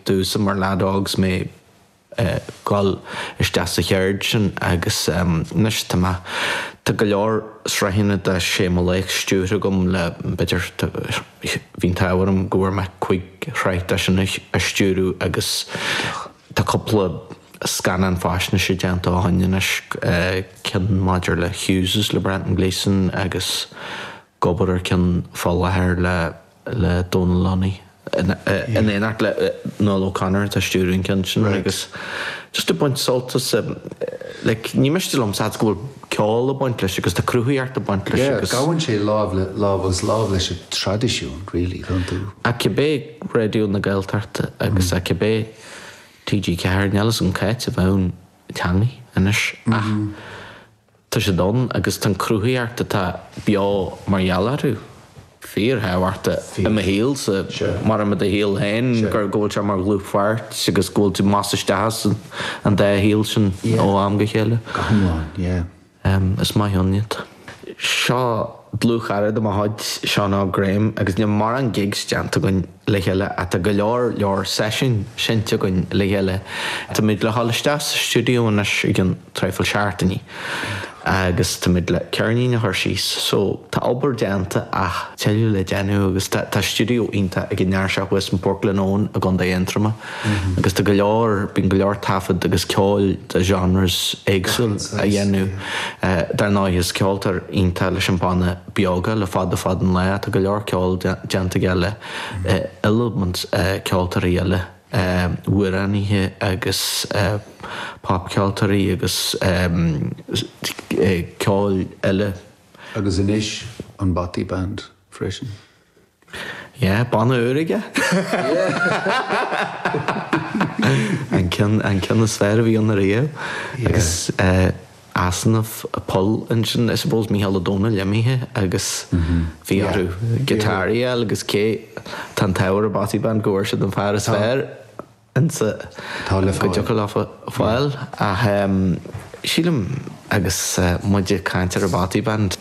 D'úsáid mar leads dom é dhul isteach sa cheird sin agus anois tá mé, tá go leor sraitheanna de Sé Mo Laoch stiúrtha agam le b'fhéidir, bhí an t-ádh orm go bhfuair mé cúig shraith de sin a stiúradh agus tá cúpla scannán faisnéise déanta ó shoin anois, ceann maidir le Hughes' le Brendan Gleeson agus ag obair ar cheann faoi láthair le. le Dónal Lunny in éineacht le Nuala O'Connor atá ag stiúradh an ceann sin agus just ag baint sult as like ní miste liom a fhad is go bhfuil ceol ag baint leis agus tá cruthaíocht ag baint leis agus gabhann sé lámh le lámh agus lámh leis an traidisiún really don tír, cibé Raidió na Gaeltachta agus a cibé TG4 níl a fhios agam cá háit a mbeadh an teanga anois ach Tá siad ann agus tá an cruthaíocht atá beo mar gheall orthu fíorthábhachtach i mo shaolsa, mar i do shaol féin, go bhfuil sé mar dhlúthpháirt agus go bhfuil tú amach is isteach as an dá shaol sin ó am go chéile. Go hiomlán, yeah. Is maith ann iad. Seo dlúthchara de mo chuid, Seán Óg Graham, agus níl morán gigs déanta againn. le chéile tá go leor leor seisiúin seinnte againn le chéile. Táimid le dhul isteach sa stiúideo anois i gceann traidhfil seachtainí agus táimid le ceirnín a chur síos so tá obair déanta ach tuilleadh le déanamh agus tá tá stiúideo iontach ag an fhear seo thuas in Portglenone i gContae Aontroma agus tá go leor bíonn go leor taifead agus ceoil de genres éagsúla á dhéanamh dar ndóigh is ceoltóir iontach leis an banna Beoga le fada fada an lá. Tá go leor ceoil déanta aige le hiliomad ceoltóirí eile, amhránaithe agus popcheoltóirí agus ceoil eile. Agus anois an Bothy Band freisin. Yeah, banna úr aige? An ceann, an ceann is fearr a bhí ann ariamh. Agus eh easnamh, poll ansin I suppose Mícheál Ó Domhnaill imithe agus bhí orthu guitar a fháil agus cé, tá an t-ádh ar an Bothy Band go bhfuair siad an fear is fearr insa, Tá le fáil. go dtiocfadh leofa a fháil ach em sílim agus eh muid ag caint ar an Bothy Band,